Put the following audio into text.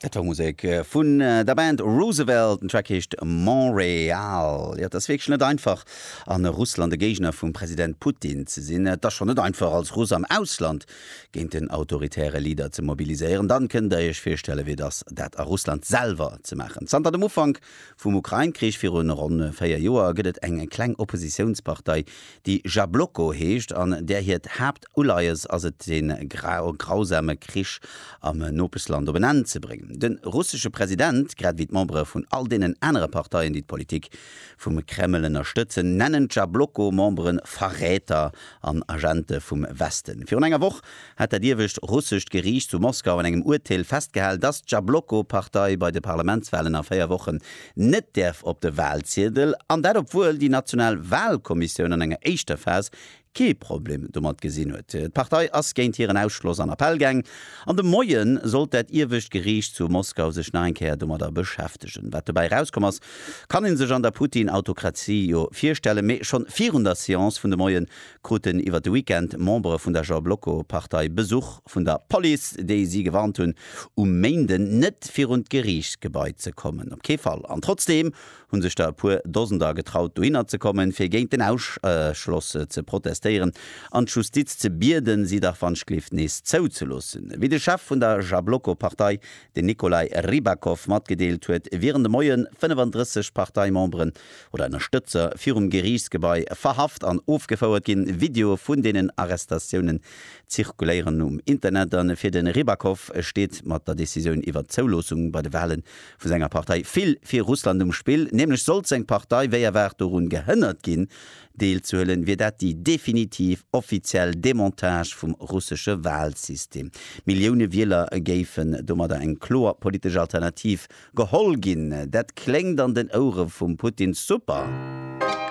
Dat war Musek vun der Band Roosevelt. Den Track heescht Montréal. Jo, et ass wierklech net einfach, a Russland e Géigner vum President Putin ze sinn. Et ass schonn net einfach, als Russ am Ausland géint den autoritäre Leader ze mobiliséieren. Dann kënnt der iech virstellen, wéi et ass, dat a Russland selwer ze maachen. Zanter dem Ufank vum Ukrain-Krich viru ronn véier Joer gëtt et eng kleng Oppositiounspartei, déi Jabloko heescht an där hiert Uleies ass et dee grausame Krich am Nopeschland op en Enn ze bréngen. De russesche President, grad ewéi d'Membere vun all deenen anere Parteien, déi d'Politik vum Kreml ënnerstëtzen, nennen d'Jabloko-Membere Verräter an Agente vum Westen. Virun enger Woch hat dat iewescht russescht Geriicht zu Moskau an engem Urteel festgehal, datt d'Jabloko-Partei bei de Parlamentswalen a véier Wochen net däerf op de Walziedel, an dat obwuel déi national Walkommissioun an enger éischter Phas kee Problem domat gesinn huet. D'Partei ass géint hiren Ausschloss an Appell gaang an de Moie sollt dat iewescht Geriicht zu Moskau sech nach eng Kéier domadder beschäftegen. Wat dobäi erauskomm ass, kann ee sech an der Putin-Autokratie jo virstellen. Mee schonn virun der Seance vun de Moie kruten iwwer de Weekend Membere vun der Jabloko-Partei Besuch vun der Police, déi si gewarnt hunn, um Méinden net virun d'Geriichtsgebai ze kommen. Op kee Fall! An trotzdeem hunn sech der e puer Dosender getraut dohinner ze kommen, fir géint den Ausschloss ze protestéieren an d'Justiz ze bieden, si dach wanschglift nees zouzeloossen. Wéi de Chef vun der Jabloko-Partei, den Nikolai Rybakov, matgedeelt huet, wieren de Moien 35 Parteimemberen oder Ënnerstëtzer virum Geriichtsgebai verhaft an ofgefouert ginn. Videoe vun deenen Arrestatiounen zirkuléieren um Internet an fir de Rybakov steet mat der Decisioun iwwer d'Zouloossung bei de Wahlen vu senger Partei vill fir Russland um Spill, nämlech sollt seng Partei wéi erwaart dorun gehënnert ginn, deelzehuelen, wier dat déi definitiv offiziell Demontage vum russesche Walsystem. Millioune Wieler géifen domadder eng kloer politesch Alternativ geholl ginn. Dat kléngt an den Ouere vum Putin super.